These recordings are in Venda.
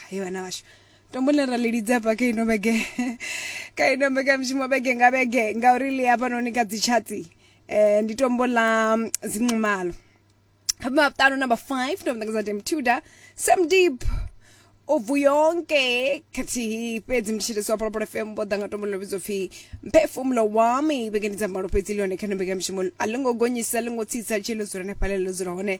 he vhana vhashu tombo ḽine ra ḽi lidza hafha kha ino vhege kha ino mbekanyamushumo vhege nga vhege ngauri ḽi hafhanoni kha dzitshati um ndi tombo ḽa mm, zinxumalo hafha maṱanu number five ndo mutakadza dem tuda sam deep ubvu yonke khathihi fhedzi mthetshelesi wa pholopolo fm vho ḓa nga tombo ḽo vhidzwa pfhi mphefumulo wami vhege ndi dza mbalo fhedzi ḽi hone kha ino mbekanyamushumo a ḽo ngo gonyisa ḽo ngo tsitsa tshee ḽo dzula hanefhaḽe ḽo dzula hone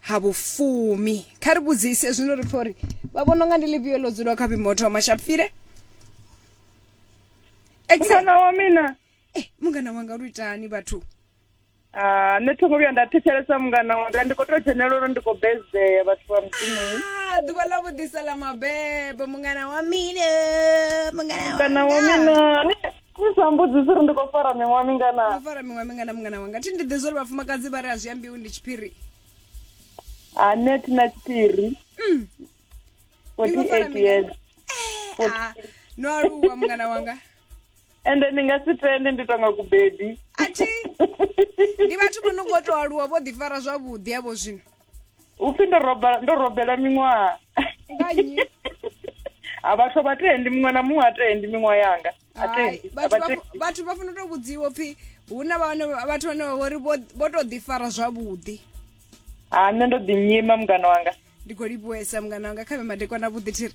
ha vhufumi kha ri vhudzise zwino ri pfha uri vha vhona unga ndi ḽifhio ḽo dzulaho kha vhimotho wa mashapfile mungana wa mina eh, mungana wanga lu itani vhathu Ah, nṋe thongo vhuya nda thetshelesa mungana wanga ndi khou tou dzhenelela uri ndi khou bezea vhathu vha mudzimuni Ah, ḓuvha ḽa vhuḓisa ḽa mabebo mungana wa mina mungana mungana wa mina ni sa mbudzisi uri ndi khou fara miṅwaha mingana no fara miṅwaha mingana mungana wanga thi ndi ḓi zwa uri vhafumakadzi vha ri a zwi ambiwi ndi tshiphiri ane thi na tshiphiri mm. years eh, ah, no aluwa mungana wanga ende ni nga si tende ndi tonga kubebi athi ndi vhathu vho no ngo to aluwa vho ḓifara zwavhuḓi avho zwino upfi ndo roba ndo robela miṅwaha nga nnyi a vhathu a vha tendi muṅwe na muṅwe a tendi miṅwaha yanga a Hai, tendi a vhathu vha vha- tendi vhathu vha funa u to vhudziwa pfi hu na vhane vhathu vhane vha vhori vho- vho to ḓifara zwavhuḓi ha nṋe ndo ḓi nyima mungana wanga ndi khou livhuwesa mungana wanga kha vhe madekwana vhuḓi thiri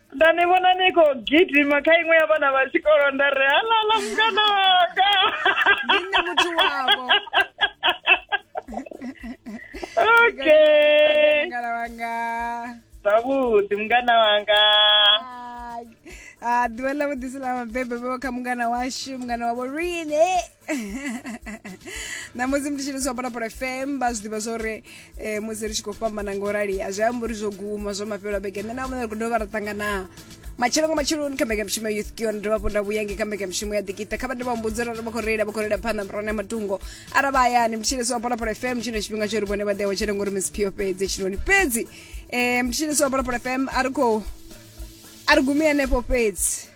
nda ni vhona ni khou gidima kha iṅwe ya vhana vha tshikolo nda ri halala mukana wanga ndi nṋe muthu wavho okay mukana wanga zwavhuḓi mungana wanga Ai. Ah, ḓuvha ḽa vhuḓisi ḽa mabebe vho kha mungana washu mungana wavho rine ṋamusi ndi tshi ni zwapana pula fm vha zwi ḓivha zwori um eh, musi ri tshi khou fhambana nga u rali a zwi ambi uri zwo guma zwo mafhelo a vhege nṋe na vhona ri khou dovha ra ṱanganaa matshelo nga matsheloni kha mbekanyamushumo ya youth kion ndo vha vhonda vhuyange kha mbekanyamushumo ya dikita kha vha ndi vha mbudzi uri vha khou reila vha khou reila phanḓa murone ya matungo ara vha hayani mtshilisi wa pholaphola fm tshino tshifhinga tsho ri vhone vha ḓewa tshele ngori miss pio fhedzi tshinoni fhedzi um mtshilisi wa pholaphola fm a ri khou a ri gumi henefho fhedzi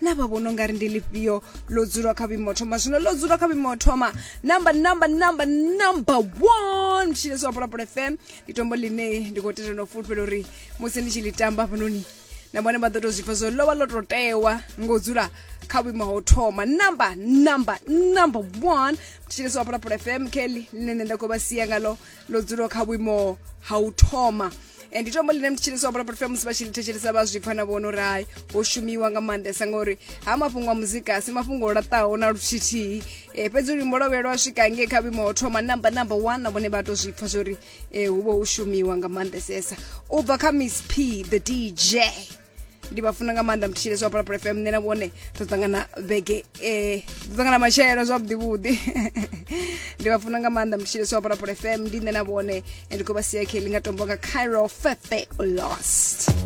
na vha vhona ungari ndi lifhio ḽo dzula kha vhuimo thoma zwino ḽo dzula kha vhuimo thoma number number number number one tshine zwa pulapula fm ndi tombo ḽine ndi khou tenda no fulufhela uri musi ndi tshi ḽi tamba hafhanoni na vhone vha ḓo tou zwipfa zwo lovha ḽo tou tewa ngo dzula kha vhuimo ho thoma number number number one tshine zwa pulapula fm kelly ḽine nṋe nda khou vha sia ngalo ḽo dzula kha vhuimo ha u thoma and ndi tombo ḽine mthetshelesi wa bulaporofia musi vha tshi ḽi thetshelesa vha zwi pfa na vhono rai ho shumiwa nga maanḓesa ngauri ha mafhungo a muzika a si mafhungo o laṱaho na luthithihi um eh, fhedzi luimbo lwa vhuya lwa swika ngei kha vhuimo ho thoma namba namba one na vhone vha to zwi pfa zwo ri um eh, hu vha hu shumiwa nga maanḓesesa u bva kha miss p the dj ndi vha funa nga maanḓa mthishile zwa phalaphala fm nṋe na vhone ḓo ṱangana vhege um ḓo ṱangana matshelo zwavhuḓivhuḓi ndi vha funa nga maanḓa mthishile zwa phalaphala fm ndi nṋe na vhone ndi khou vha sia khe ḽi nga tombo nga cairo fethe lost